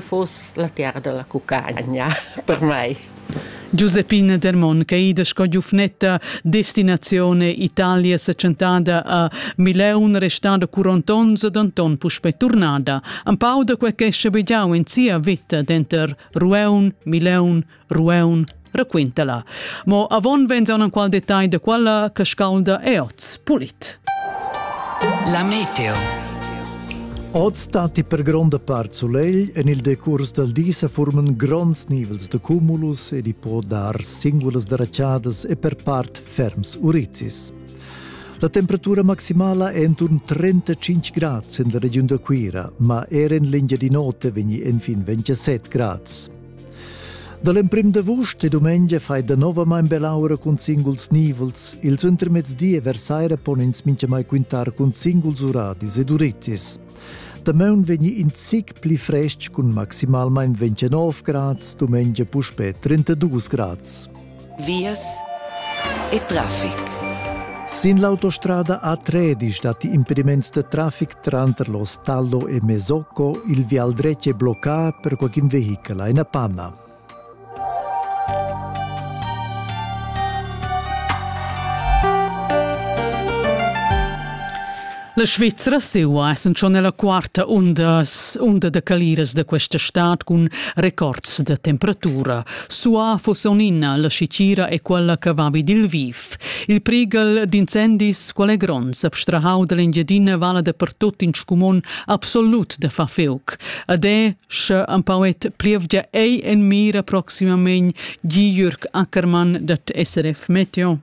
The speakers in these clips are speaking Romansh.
fuss la terra dalla cucagna per mei. Giuseppine Dermon ch'ei da sco giufnetta destinazione Italia seccentada a Mileun restada curont onns ed Anton puspei turnada. Empau da quei che schabegiau en sia veta denter Rueun, Mileun, Rueun raquinta la. Mo avon venzaun qual detagl de quella che scaulda e oz pulit. La meteo. Oz datti per gronda part sulegl, en il decurs dal di se forman gronds nivels de cumulus ed i può dar singulas daraciadas e per part ferms urizis. La temperatura maximala è intorno 35 gradi in la regiun da Cuira, ma era in linea di notte vegni infin 27 gradi. Da l'emprim d'avust e dumengia fai danovamain bell'aura cun singuls nivels. Il suentermezdi e vers saira pon ins mintgamai quintar cun singuls uradis ed urittis. Damaun vegni in zic pli frestg cun maximalmain 29 grads, dumengia puspè 32 grads. vias e traffic. Sin l'autostrada A13 datti impediments de traffic tranter lo Stallo e Mesocco, il vial dretg è bloccà per qualcun vehicola in Panna. La Svizra seua essan schon ella quarta undas, unda da caliras da questa stad cun records da temperatura. Sua fus onina la scitira e quella che va vid il viv. Il prigal d'incendis qual è gronds abstrahau dall'Engiadina vala da pertot in scumon absolut da fa feuc. Ade, sche empauet plievgia ei en mira proximamein gi Jürg Ackermann dat SRF Meteo.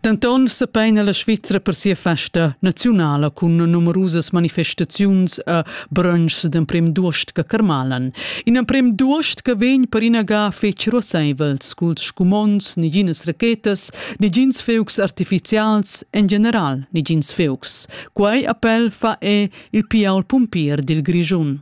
Denton sepeina la Svizra per sia festa naziunala cun numerusas manifestaziuns a brunchs d'emprem d'uost che carmalan. In emprem d'uost che vegn per ina ga fetg ruasseivels culs scumonds, neginas rachetas, negins feucs artificials, en general negins feucs. Quei appel fa è il pial pumpier dil Grischun.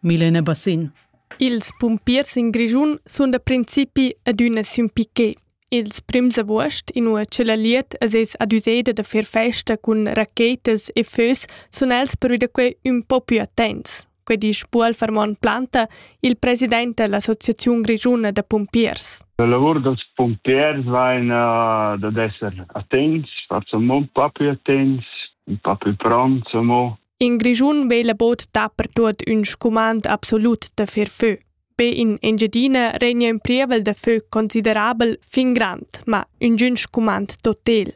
Milena Bassin. Ils pumpiers in Grischun sun da principi adüna sün piquet. Ils prims avuost, inua che la liet es ais adüseda da fer festa cun rachetas e fös, sun els prüda quai ün po pü attents. Quai disch Buol Fermon Planta, il president da l'Associaziun grischuna da pumpiers. La lavur dels pumpiers vain uh, dad esser attents, far amò un po pü attents, un po pü pronts amò. In Grischun vela bod dapertuot ün scumand absolut da fer fö. Be in Engiadina regna in prievel da fö considerabel fin grand, ma üngün scumand totel.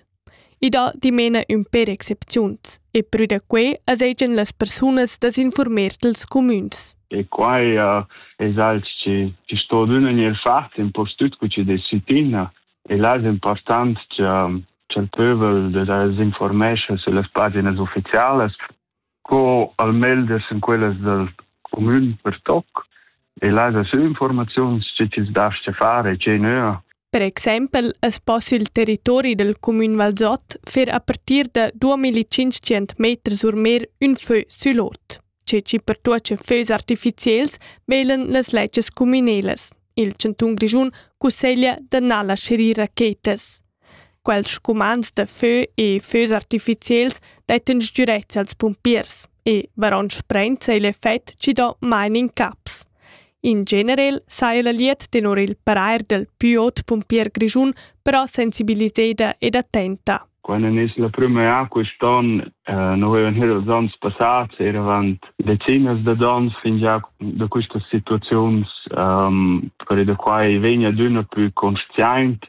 I dà dimena ün per excepziuns e prü da quai as hegian las persunas da s'infurmer dels cumüns. E qua uh, es alch chi, chi sto d'üna maniera fat impostüt cu chi desitina e là es important cha, cha il pövel da s'informescha sulle paginas ufficialas co almelder sin quellas dal comün per toc e las sü informaziuns che chi's dascha far e che nöa. Per exempel es poss il territori del comün Valsot fer a partir da 2500 meter sur mer ün fö sül ot, che ci pertuocha fös artificiels velen las leches comünelas. Il chanton grischun cusseglia da na lascher ir rachetas. Quels scumans da fö e fös artificiels dettan sgürezza als pumpiers e varon sprenza igl effect chi do main incaps. In generel saja la lied tenor il parair dal plü ot pumpier grischun però sensibiliseda ed attenta. Quando è la prima quest'anno, eh, noi avevamo here els anni passati, eravamo decine di donne fin già da queste situazioni, um, per da qua vegna d'una più consciente